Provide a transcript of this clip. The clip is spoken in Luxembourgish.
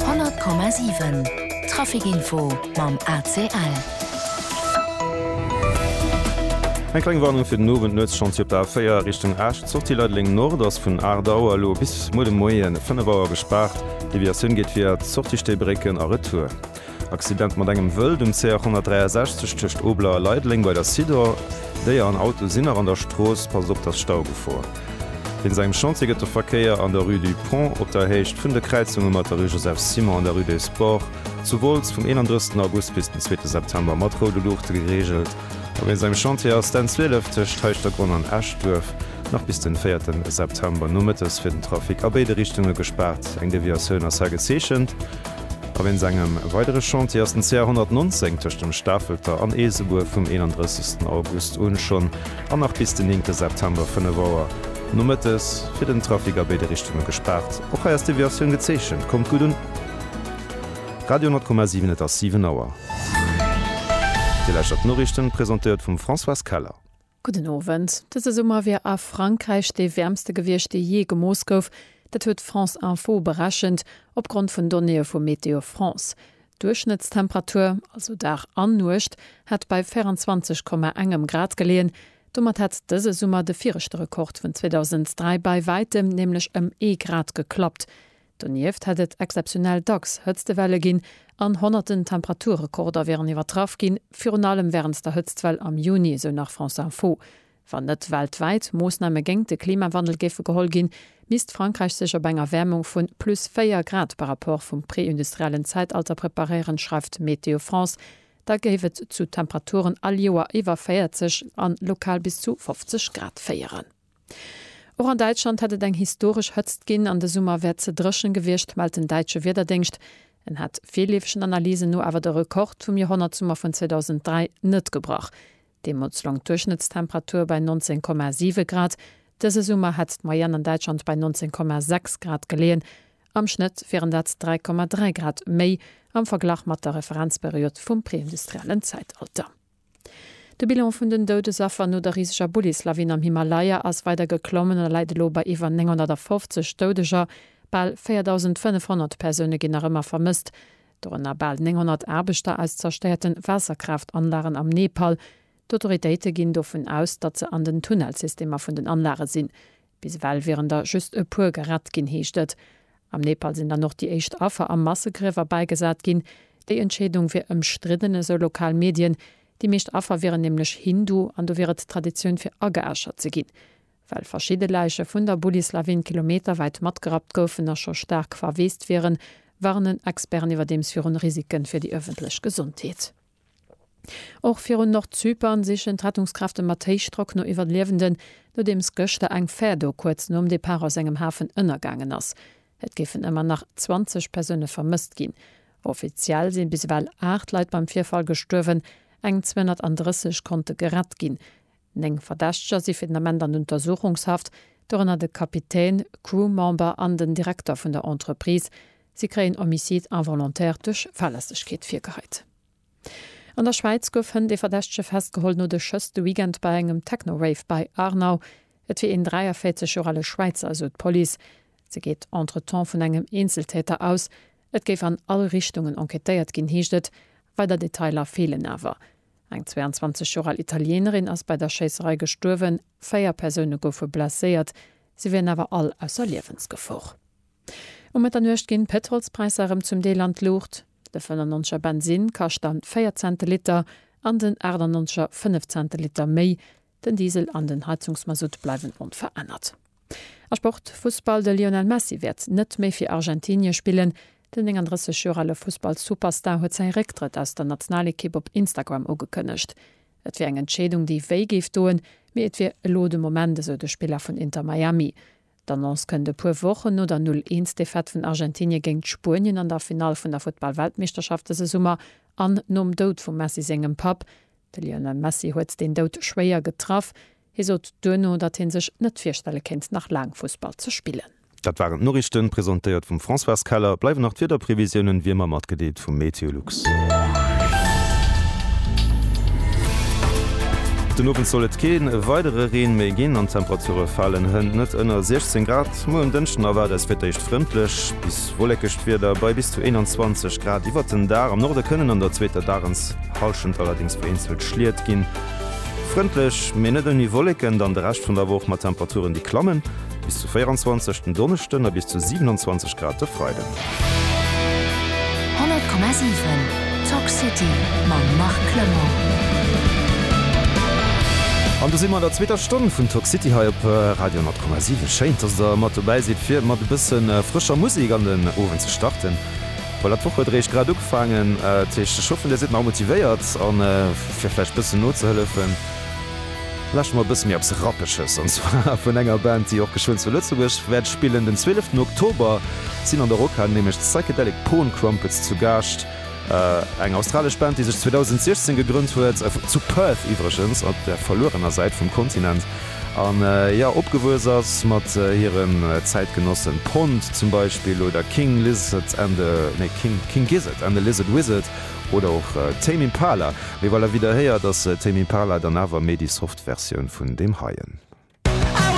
100,7 Trafic Info mam ACL. Eng kleng Warnung fir den Owend, Nuetschantier op der A4 Richtung Esch, Sortie Leideleng Nord ass vun 8 Auer elo bis muer de Moien 5 Auer gespaart. Deviatioun geet via d'Sortie Stéibrécken a Retour. Accident mat engem Wëld um CH 163 tëscht Obler a Leideleng bei der Sidor. Déier an Auto sinn nach an der Strooss, passt op, et ass Staugefor. Wéinst engem Chantier gëtt de Verkéier an der Rue du Pont op der Héicht vun de Kräizunge mat der Rue Joseph Simon an der Rue des Sports zu Wolz vum 31 August bis den zweete September mat roude Luuchte gereegelt. A wéinst engem Chantier ass d'N 12 tëscht Heischtergronn an Eschduerf nach bis den véierte September nomëttes fir den Trafic a béide Richtunge gespaart, eng Deviatioun ass hei gezeechent. A wéinst engem weidere Chantier ass den CR 119 tëscht dem Stafelter an Eesebuer vum 31 August un schonn an nach bis den 9 September 5 Auer nomëttes fir den Trafic a béide Richtunge gespaart. Och hei ass Deviatioun gezeechent. Kommt gutt un! Radio 10,7 Et ass 7 Auer. Dir lauschtert d'Noriichten, presentéiert vum Françoise Keller. Gudden Owend. Dëse Summer wier a Frankräich dee wäermste gewiescht, dee jee gemooss gouf. Dat huet France Info berechent, opgrond vun Donnéeë vu Météo France. D'Duerchschnëttstemperatur, also Dag an Nuecht, hätt bei 24 Komma engem Grad geleeën. Domat hätt dëse Summer de viregte Rekord vun 2003 bei wäitem, nämlech ëm ee Grad, geklappt. Donieft hätt et exzeptionell dacks Hëtztewelle ginn an honnerten Temperaturrekorder wieren iwwertraff ginn, virun allem wärend der Hëtztwell am Juni, esou nach France Info. Wann net weltwäit Moossname géingt de Klimawandel géife geholl ginn, misst Frankräich sech op eng Erwäermung vu plus 4 Grad par Rapport vum preindustriellen Zäitalter preparéieren, schreift Météo France. Da géif et zu Temperaturen all Joer iwwer 40 an lokal bis zu 50 Grad féieren. Och an Däitschland hätt et eng historesch Hëtzt ginn an de Summer wär ze dréchen gewiescht, mellt den däitsche Wiederdéngscht. En hätt virleefegen Analysen no awer de Rekord vum Joerhonnertsummer vun 2003 net gebrach. Deemools loung d'Duerchschnëttstemperatur bei 19,7 Grad. Dëse Summer hätt d'Moyenne an Däitschland bei 19,6 Grad geleeën. Am Schnëtt wieren dat 3,3 Grad méi am Verglach mat der Referenzperiod vum preindustriellen Zäitalter. De Bilan vun den Doudesaffer no der riseger Bullis-Lawin am Himalaya ass weider geklommen a läit elo bei iwwer 950 Doudeger. Bal 4.500 Persoune ginn nach ëmmer vermësst, dorënner bal 900 Aarbechter aus zerstéierte Waasserkraaft-Anlagen am Nepal. D'Autoritéite ginn dovun aus, datt se an den Tunnelsystemer vun den Anlage sinn. Bis ewell wieren der just e puer gerett ginn, heescht et. Am Nepal sinn dann och déi éischt Affer a Massegriewer bäigesat ginn. Déi Entscheedung wier ëmstridden, esou lokal Medien. Déi meescht Affer wieren nämlech Hindu an do wier et Traditioun fir ageäschert ze ginn. Well verschidde Läiche vun der Bullislawin kilometerwäit matgerappt goufen a scho staark verweest wieren, warnen Experten iwwerdeems virun Risike fir déi ëffentlech Gesondheet. Och virun Nordzypern sichen d'Rettungskräfte mat Héichdrock no Iwwerliewenden, nodeems gëschter eng Fär do kuerz nom Depart aus engem Hafen ënnergaangen ass. Et géifen ëmmer nach 20 Persoune vermësst ginn. Offiziell si bis ewell 8 Leit beim Virfall gestuerwen, eng 230 konnte gerett ginn. Néng Verdächteger si fir den Ament an Untersuchungshaft, dorënner de Kapitän, Crew-Member an den Direkter vun der Entreprise. Si kréien Homicide involontaire duerch Fahrlässegkeet virgeheit. An der Schwäiz gouf hënt ee Verdächtege festgeholl no de Schëss de Weekend bei engem Techno-Rave bei Arnau. Et wier een 43 Joer ale Schwäizer, esou d'Police. Se geet entretemps vun engem Eenzeltäter aus. Et géif an all Richtungen enquêtéiert ginn, heescht et. Weider Detailer feelen awer. Eng 22 Joer al Italienerin ass bei der Schéisserei gestuerwen, véier Persoune goufe blesséiert, si wieren awer all ausser Liewensgefor. Um Mëtternuecht ginn d'Pëtrolspräisser erëm zum Deel an d'Luucht, de 95 er Bensinn kascht dann 4 Cent de Liter an den 98 er 5 Cent de Liter méi Den Diesel an den Heizungsmasutt bleiwen onverännert. A Sport, Fussball, De Lionel Messi wäert net méi fir Argentinie spillen. Den 39 Joer ale Fussballsuperstar huet säi Récktrëtt aus der Nationalekipp op Instagram ugekënnegt. Et wier eng Entscheedung, déi wéi géif doen, mee et wier elo de Moment, esou de Spiller vun Inter Miami. D'Annonce kënnt e puer Wochen no der Null Eens Defaite vun Argentinie géint Spuenien an der Finall vun der Futtballweltmeeschterschaft dëse Summer an nom Doud vum Messi sengem Papp, De Lionel Messi huet deen Doud schwéier getraff. Hie sot duerno, datt hie sech net virstelle kéint, nach laang Fussball ze spillen. Dat waren d'Noriichten, presentéiert vum Françoise Keller. Bleiwen nach d'Wiederprevisiounen, wéi ëmmer matgedeelt vum MeteoLux. Den Owend soll et kee weidere Reen méi ginn an d'Temperature falen hënt net ënner 16 Grad. Muer um Dënschden erwaart eis fir d'éischt frëndlech bis wolléckegt Wieder bei bis zu 21 Grad iwwert den Dag. Am Norde kënnen an der zweeter Dagens. D'Hallschent allerdings vu eenzelt Schliet ginn frëndlech, mee net ouni Wolleken dann de Rescht vun der Woch, mat Temperaturen déi klammen bis zu 24 den Donneschden a bis zu 27 Grad de Freiden. 100,7 Talk City mam Marc Clement. An do si mer an der zweeter Stonn vun Talk City hei op Radio 10,7. Schéin, dass der mat dobäi sidd fir mat e bësse frëscher Musek an den Owend ze starten. Voilà, d'Woch huet eréischt grad ugefaangen. Dat heescht, ech hoffen, Dir sidd nach motivéiert. A fir vläicht e bëssen nozehellefen, lauschtert mol e bësse méi eppes Rappeges, an zwar vun enger Band, déi och geschwënn zu Lëtzebuerg wäert spillen. Den zwieleften Oktober sinn an der Rockhal nämlech d'Psychedelic Porn Crumpets zu Gaascht, eng australesch Band, déi sech 2016 gegrënnt huet, zu Perth iwwregens, op der verluerener Säit vum Kontinent. A jo, opgewuess ass mat hiren Zäitgenossen Pond zum Beispill oder King Lizard and the, nee, King, King Gizzard and the Lizard Wizard oder och Tame Impala. Mee voilà, wéi der héiert ass Tame Impala dann awer méi déi soft Versioun vun deem heien.